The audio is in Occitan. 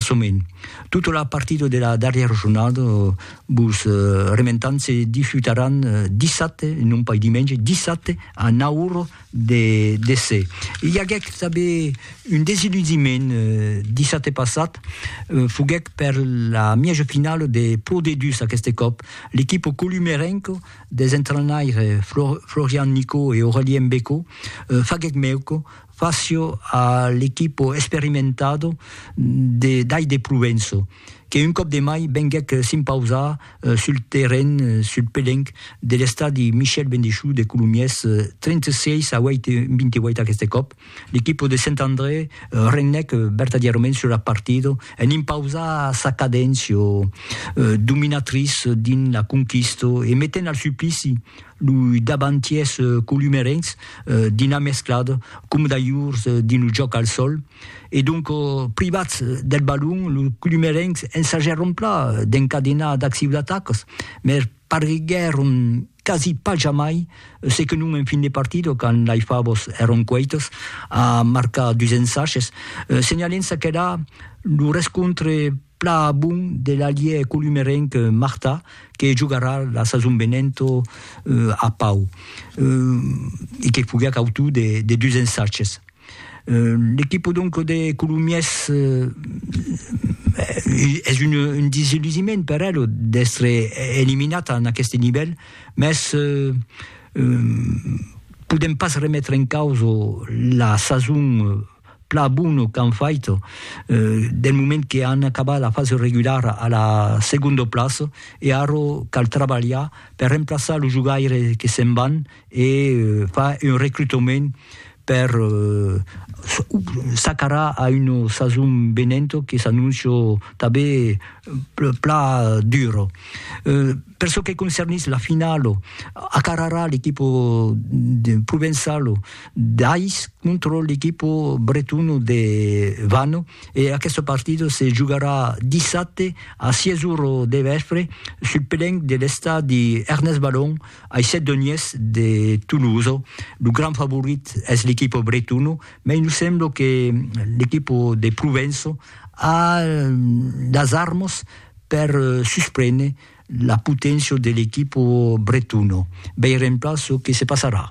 Soment, tota la partida de la darrièra jornada vos rementam se disputaràn dissabte, non pas dimenge, dissabte a 9 ora de DC. I aguèc tanben un desiludiment dissabte passat, foguèc per la mièja finala de Pro D2 aqueste còp. L'equipa columerenca des entrainaires Florian Nicot e Aurelien Becot faguèc mèuca Facio a l'equipo esperimentado de Dai de Provenço, que un còp de mai venguèc s'impausar sul terren, sul pelenc, de l'estadi Michel Bendichou de Colomiers, 36 a 28 aqueste còp. L'equipo de Saint André regnèc vertadièrament sur la partida en impausar sa cadéncia dominatrice dins la conquista e metent al suplici Lo davantièr columerenc dina mesclat com d'ajors dins lo jòc al sòl e donc privats del balon, los columerencs ensajèron pla d'encadenar d'accibl'atacas mai pariguèron quasi pas jamai se que non en fin de partida quand lei favas èron queitas a marcar dus ensages. Senhalèm çaquelà lo rescontre Plan a bon de l'alièr columerenc Martà que jogarà la sason venent a Pau e que foguèt autor de dus ensatges. L'equipa donc de Colomiers es un desillusiment per ela d'èstre eliminat en aqueste nivèl, mès podèm pas remetre en causa la sason plan bono qu'an fait del moment que an acabat la fasa regulara a la segunda plaça e ara cal trabalhar per remplaçar los jogaires que se'n van e far un recrutament per s'acarar a una sason venenta que s'anóncia tanben plan dura. Per çò que concernís la finala, acararà l'equipa provençala D'ais contra l'equipo bretono de Vanno e aqueste partido se jogarà dissabte a 6 ora de vèspre sul pelenc de l'estadi Ernest Balon ai Sedoniers de Tolosa. Lo grand favorit es l'equipo bretono, mai nos sembla que l'equipo de Provença a las armas per susprene la poténcia de l'equipo bretono. Veirem plan çò que se passarà.